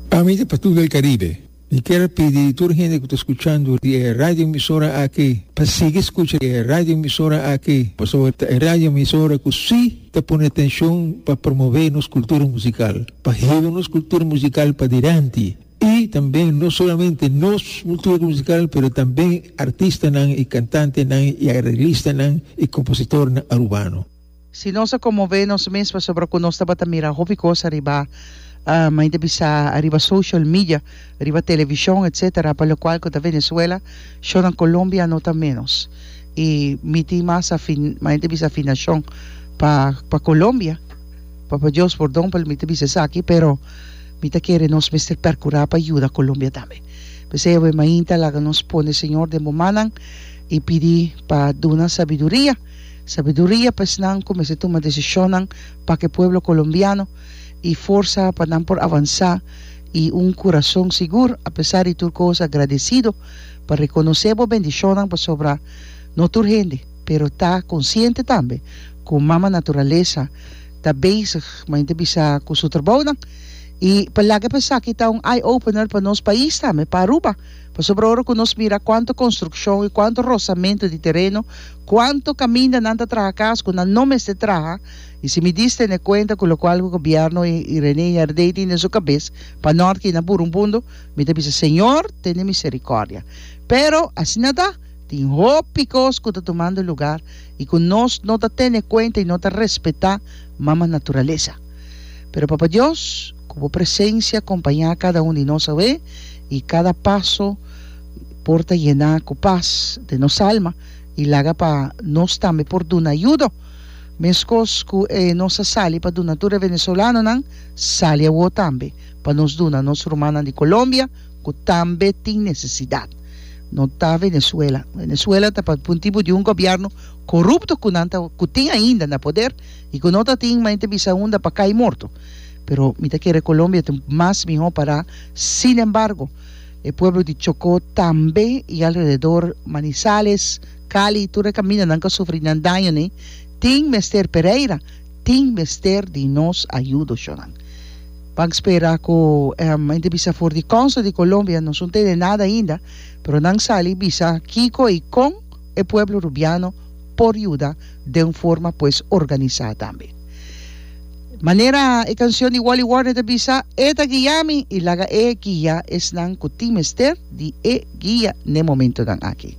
Pa mi ta pa tur el Caribe. Mi kier pidi di tur hende ku ta skuchando di e radioemisora aki pa sigui skucha di e radioemisora aki pasobra ta e radioemisora ku si ta pone atenshon pa promove nos kultura musikal, pa hiba nos kultura musikal padilanti i tambe no solamente nos kultura musikal pero tambe artistanan i kantantenan i areglistanan i kompositornan Arubano. Si nos a konmové nos mes pasobra ku nos tabata mira hopi kos ariba, main ta bisa ariba social media, riba televishon, etsetera, pa lokual ku ta Venezuela, shonnan Kolombia no ta ménos. I mi tin mas afi, main ta bisa afinashon pa pa Kolombia, Papa Dios pordon pa lo mi ta bisa esaki, pero mi ta kere nos mester pèrkurá pa yuda Kolombia tambe. P'esei awe mainta laga nos pone Señor den bo mannan i pidi pa duna sabiduria. Sabiduria pa esnan ku mester tuma desishonnan pa ke pueblo colombiano i forsa pa nan por avansá i un kurason sigur. Apesar di tur kos agradesido pa rekonosé bo bendishonnan pasobra no tur hende pero ta konsiente tambe ku Mama Naturalesa ta bezig main ta bisa ku su trabounan i pa laga pa esaki ta un eye opener pa nos pais tambe pa Aruba. Pasobra ora ku nos mira kuantu konstrukshon i kuantu rosamentu di tereno, kuantu kaminda nan ta traha kas ku nan no mester traha, i si mi dis tene kuenta ku lokual ku gobièrnu i René Herdé tin den su kabes pa nòrke i na Burungbundu, mi ta bisa, Señor, tene miserikòrdia. Pero, asina ta, tin hopi kos ku ta tumando lugar i ku nos no ta tene kuenta i no ta respetá mama naturalesa. Pero Papa Dios, ku bo presensia kompañá kada un di nos awe, i kada paso por ta yená ku pas den nos alma i laga pa nos tambe por duna yudo. Meskos ku e nos a sali pa duna tur e venezolanonan, sali awor tambe pa nos duna nos rumannan di Colombia ku tambe tin nesesidat. No ta Venezuela. Venezuela ta pa un tipo di un gobièrnu korupto ku nan ta ku tin ainda na poder. I cu no ta tin ma ente bisa unda pa cay morto. Pero mi ta kere Colombia ta mas miho para sin embargo e pueblo di Chocó tambe y alrededor Manizales, Cali tur e camina nan cu sufri nan daño ne tin mester Pereira tin mester di nos ayudo sho nan pan spera cu ente bisa for di costa di Colombia nos un tene nada ainda pero nan sali bisa kico y con e pueblo Rubiano por yuda den forma pues organisa tambe. Manera e cancion di Wally Warner ta bisa, E ta guia mi y laga E guia esnan cu tin mester di E guia n'e momentonan aki.